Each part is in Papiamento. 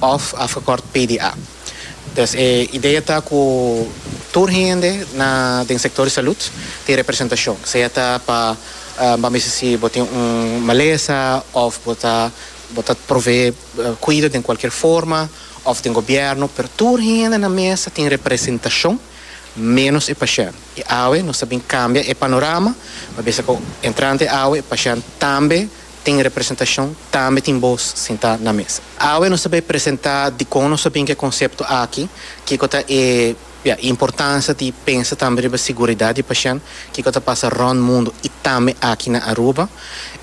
òf afgekort PDA. Pues e idea ta ku tur hende na den sektor di salud tin representashon, sea ta pa bo mester si bo tin un malesa òf bo ta bo ta provee kuido den kualkier forma òf den gobièrnu, pero tur hende na mesa tin representashon ménos e pashènt. I awe nos ta bin kambia e panorama, pa bisa ku entrante awe e pashènt tambe. tin representashon, tambe tin bos sintá na mesa. Awe nos ta bai presentá dikon nos a bin ku e konsepto aki, kiko ta e importansia di pensa tambe riba siguridat di pashènt, kiko ta pasa rònt mundu i tambe aki na Aruba.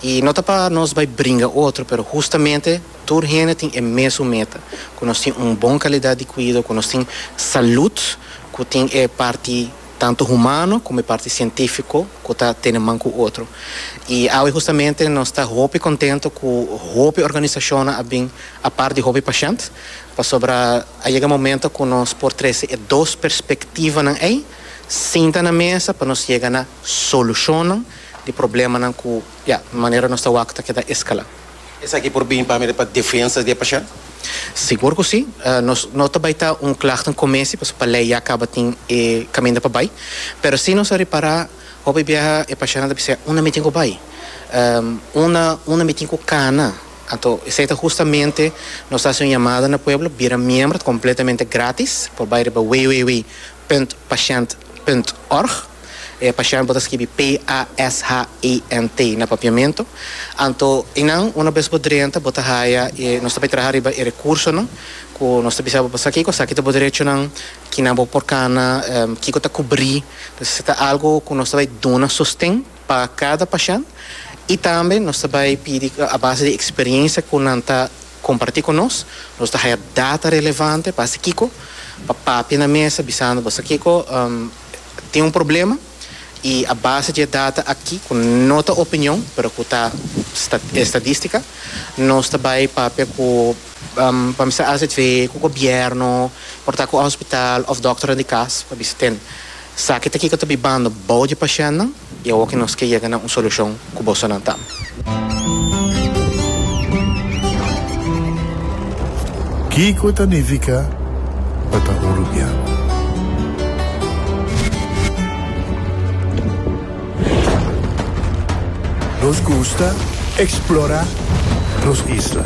I no ta pa nos bai bringa otro, pero hustamente tur hende tin e mesun meta, ku nos tin un bon kalidat di kuido, ku nos tin salut ku tin e parti. tantu humano komo e parti sientífiko ku ta tene man ku otro. I awe hustamente nos ta hopi kontentu ku hopi organisashonnan a bin apart di hopi pashènt, pasobra a yega momento ku nos por trese e dos perspektivanan ei sinta na mesa pa nos yega na solushonnan di problemanan ku, ya, manera nos ta wak ta keda eskalá. Esaki por bini pa mira pa defensa di e pashent? Sigur ku si. Nos no ta bai ta un klagte un kumesi pasobra pa lei ya kaba tin e kaminda pa bai. Pero si nos a repará hopi biaha e pashentnan ta bisa, Unda mi tin ku bai? Unda unda mi tin ku kana? Anto esei ta hustamente nos ta hasi un yamada na pueblo, bira miembro, ta kompletamente gratis, por bai riba www punt pashent punt org. E pashènt por ta skibi p-a-s-h-i-n-t na papiamentu. Anto eynan, una bes bo drenta, bo ta haya e, nos ta bai traha riba e rekursonan ku nos ta bisa bo pasa kiko, sa ki ta bo derechonan, kinan bo por kana, kiko ta kubrí. Entonces e ta algu ku nos ta bai duna sosten pa kada pashènt i tambe nos ta bai pidi a base di eksperiencia ku nan ta kompartí ku nos, nos ta haya data relevante pa hasi kiko, pa papia na mesa bisando bo sa kiko. tin un problema y a base dje data aki cu no ta opinion pero cu ta estadistica nos ta bay papia cu pa mester haci dje cu gobierno por ta cu hospital of doctornan di cas pa bisa ten saki ta kico ta bibando bao dje pashentnan. I awor ke nos ke yega na un solushon ku bosonan ta. Kiko ta nifiká pa ta un rubian? Nos gusta eksplorá nos isla.